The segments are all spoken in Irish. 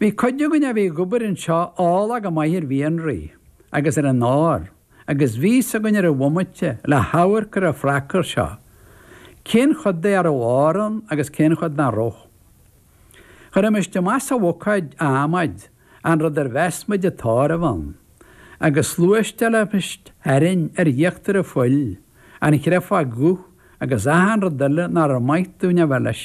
Bhí cuid againn a bhí ag obair anseo eolach go maith ar mhianraí agus ar an ór agus bhí's againn ar an bhomaite le hamharc ar an phracar seo cén chuid de a raibh ór ann agus cén chuid nach raibh. Chuirimis amach sa bhucáid, adhmaid, an rud ar mheas muid an t-ór a bheith ann agus shluaisteáilimis tharainn ar íochtar an phoill an chréafóg dhubh agus achan rud eile nár mhaith dúinn a bheith leis.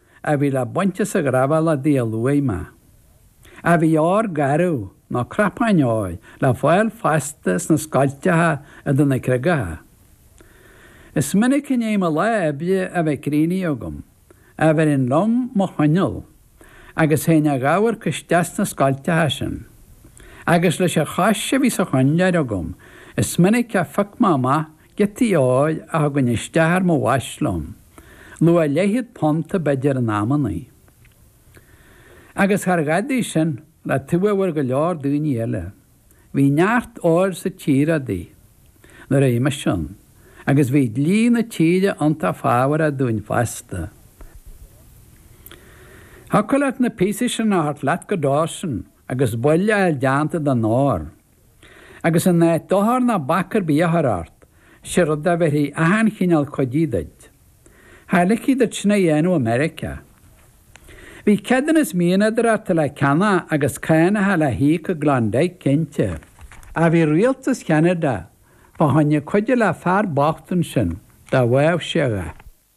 a bhí le baint as an ghrabháil Dia Luain má a bhí ór garbh nó cnapáin óir le fáil fosta sna scoilteacha idir na creagacha. Is minic i ndiaidh mo lá oibre a bheith críochnaithe agam a bheirinn liom mo choinneal agus théinn a dh'amharc isteach sna scoilteacha sin. Agus leis an chois a bhí sa choinnleoir agam is minic a phioc mé amach Giotaí óir a thugainn isteach ar mo bhais liom, luach leathchéad punta b'fhéidir in amannaí. Agus char dhadaidh sin, le taobh a bhfuair go leor daoine eile. Bhí neart óir sa tír adaí, nuair a bhí mise ann, agus bhí dlí na tíre iontach fábharach dúinn fosta. Thiocfadh leat na píosaí sin a thabhairt leat go Dawson agus baill a fháil deánta den ór. Agus in áit dochar ná bac ar bith a chur ort, sé rud a bhéarfaí achan chineál cuidí duit. Cha ligfí duit sin a dhéanamh i Meiriceá. Bhí ceadúnas mianadóireachta le ceannach agus cánacha le híoc i gKlondike, cinnte. Ach bhí rialtas Cheanada fá choinne cuidiú le fear bocht ansin dá bhfaigheadh sé a dhath.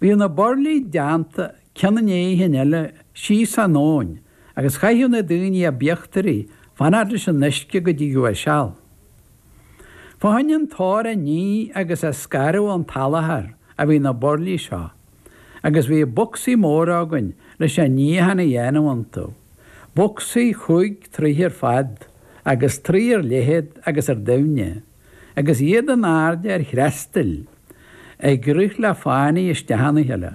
Bhíodh na burlaí deánta ceann i ndiaidh cinn eile síos an abhainn agus chaitheadh na daoine a b'íochtairí fanacht leis an uisce go dtigeadh a seal. Fá choinne an t-ór a ní agus a scaradh ón tsalachar a bhí na burlaí seo agus bhíodh bocsaí móra againn leis an níochán a dhéanamh iontu, bocsaí chúig troigh ar fad agus troigh ar leithead agus ar doimhne. agus iad in airde ar threastail, ag rith le fánaidh isteach ina chéile.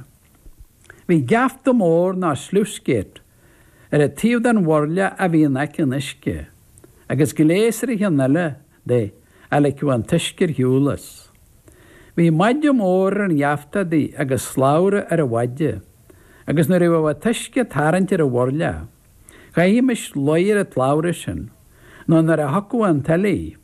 Bhí geafta mór ná sluice-gate ar an taobh den bhurla a bhí in aice an uisce, agus gléas ar an cheann eile de a ligfeadh an t-uisce ar shiúl as. Bhí maide mór ar an gheafta adaí agus slabhra ar an mhaide, agus nuair a bheadh an t-uisce ag tarraingt ar an bhurla, chaithfimis luí ar an tslabhra sin, nó nuair a thiocfadh an tuile,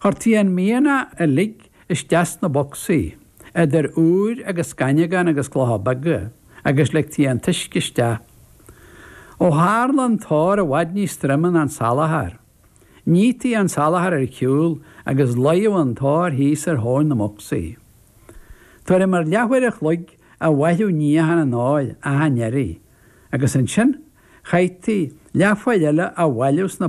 Chuirtí an mianach uilig isteach sna bocsaí, idir úir agus gaineamhán agus clocha beaga, agus ligtí an t-uisce isteach. Ó tharla an t-ór i bhfad níos troime ná an salachar, nítí an salachar ar shiúl agus luíodh an t-ór thíos ar thóin na mbocsaí. Tuairim ar leathuair a chloig a bhaineadh níochán an óir achan iarraidh, agus ansin chaithtí leathuair eile a bhailiú sna